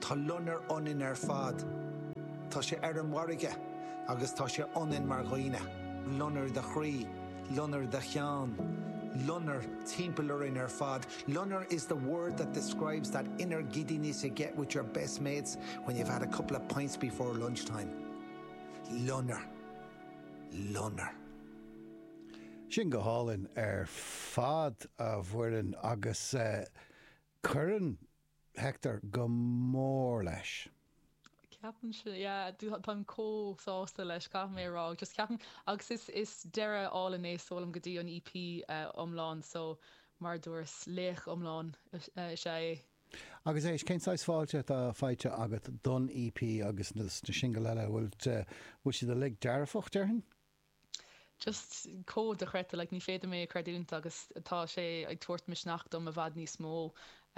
Tá loinnir ionainn ar fad. Tá sé ar an bhfarraige agus tá sé ionainn mar dhaoine. Loinnir do chroí, loinnir do cheann, loinnir timpeall orainn ar fad. Loinnir is the word that describes that inner giddiness you get with your best mates when you've had a couple of pints before lunchtime. Loinnir. Loinnir. Sin go hálainn ar fad, a Mhuireann, agus Cuireann Hector go mór leis. Ceapaim sin, yeah, táim chomh sásta leis, caithfidh mé a rá, just ceapaim, agus is, is deireadh álainn é, sílim, go dtí an EP iomlán, so mar a dúras, laoch iomlán is ea é. Agus éist, cén saghas fáilte atá faighte agat don EP agus na singil eile, an bhfuil siad uilig dearfach, déarfainn? just chomh dochreidte like ní féidir liom é a creidiúint agus tá sé ag tabhairt misneach dom i bhfad níos mó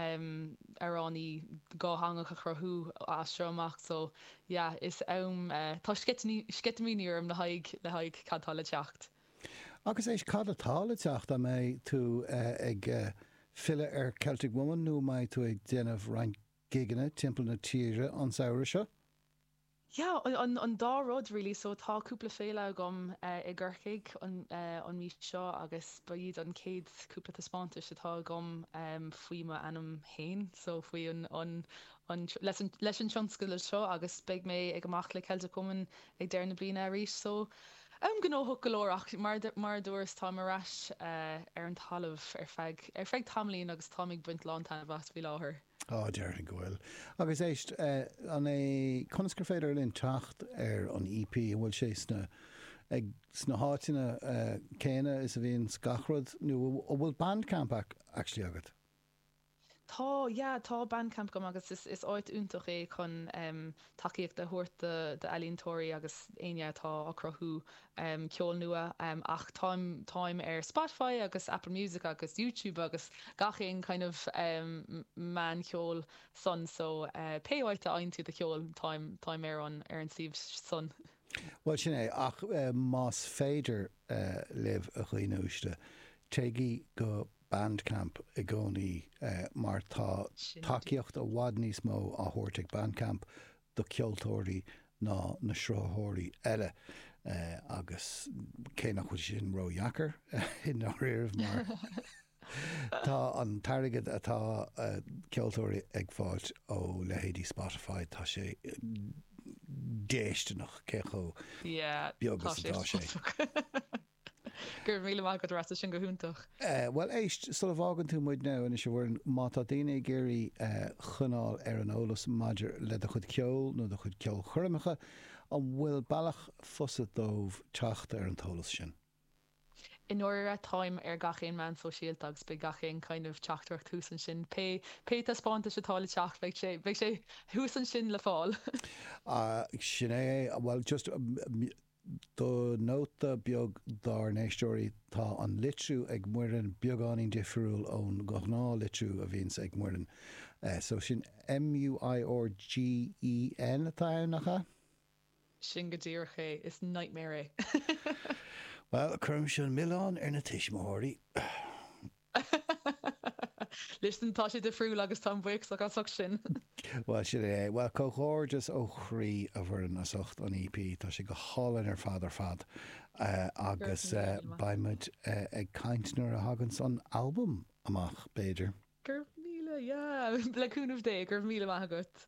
em amhráin dhátheangach a chruthú as seo amach so yeah is am eh tá sceitimíní sceitimíní orm le haghaidh le haghaidh cad tá le teacht. Agus éist cad atá le teacht an mbeidh tú eh ag eh filleadh ar Celtic Woman nó an mbeidh tú ag déanamh roinnt gigeanna timpeall na tíre an samhradh seo? Yeah, an an dá rud really, so tá cúpla féile agam eh i gCorcaigh an eh an mhí seo agus ba iad an chéad cúpla taispeántais atá agam em faoi m'ainm fhéin so faoi an an an tr- leis an leis an tionscadal seo agus beidh mé ag dul amach le Celtic Woman ag deireadh na bliana arís so em gnóthach go leor ach mar du- mar a dúras táim ar ais eh ar an talamh ar feadh ar feadh tamaillín agus táim ag baint lán taitneamh as faoi láthair. Á, déarfainn go bhfuil. Agus éist, an é, conas gur féidir linn teacht ar an EP? An bhfuil sé sna, ag, sna háiteanna céanna is a bhíonn gach rud nó an bhfuil Bandcamp actually agat? Tá, yeah, tá Bandcamp agam agus is, is áit iontach é chun ehm. tacaíocht a thabhairt do ealaíontóirí agus éinne atá ag cruthú ceol nua ach táim táim ar Spotify agus Apple Music agus Youtube agus gach aon kind of meán ceoil san so pé áit a fhaigheann tú do cheol, táim táim ar an ar an suíomh san. Bhuel sin é ach más féidir libh a dhaoine uaisle téigí go Bandcamp i gcónaí mar tá tacaíocht i bhfad níos mó á thabhairt ag Bandcamp do cheoltóirí ná na sruthaitheoirí eile agus cé nach bhfuil sé sin ró-dheacair i ndáiríre mar tá an t-airgead atá ceoltóirí ag fáilt ó leithéidí Spotify tá sé déisteanach cé chomh beag is atá sé. Go raibh míle maith agat a Rasa, sin go hiontach. Bhuel éist, sula bhfágann tú muidne anois a Mhuireann, má tá daoine ag iarraidh coinneáil ar an eolas maidir le do chuid ceoil nó do chuid ceolchoirmeacha, an bhfuil bealach fusa dóibh teacht ar an eolas sin? I ndáiríre, táim ar gach aon meán sóisialta agus beidh gach aon kind of teachtaireacht thuas ansin, pé pé taispeántais atá le teacht, beidh sé, beidh sé thuas ansin le fáil. Sin é é, bhuel just. Nóta beag dár n-éisteoirí, tá an litriú ag Muireann beagáinín difriúil ón ghnáth litriú a bhíonns ag Muireann. So sin M-u-i-r-g-e-n atá ann, nach ea? Sin go díreach é, is nightmare é. Bhuel, cuirimis an milleán ar na tuismitheoirí. Listen, tá sé difriúil agus táim buíoch as ucht sin. Bhuel, sin é é. Bhuel, comhghairdeas ó chroí, a Mhuireann, as ucht an EP. Tá sé go hálainn ar fad ar fad. Agus beidh muid ag caint nuair a thaganns an albam amach, b'fhéidir. Go raibh míle, yeah, le cúnamh Dé, go raibh míle maith agat.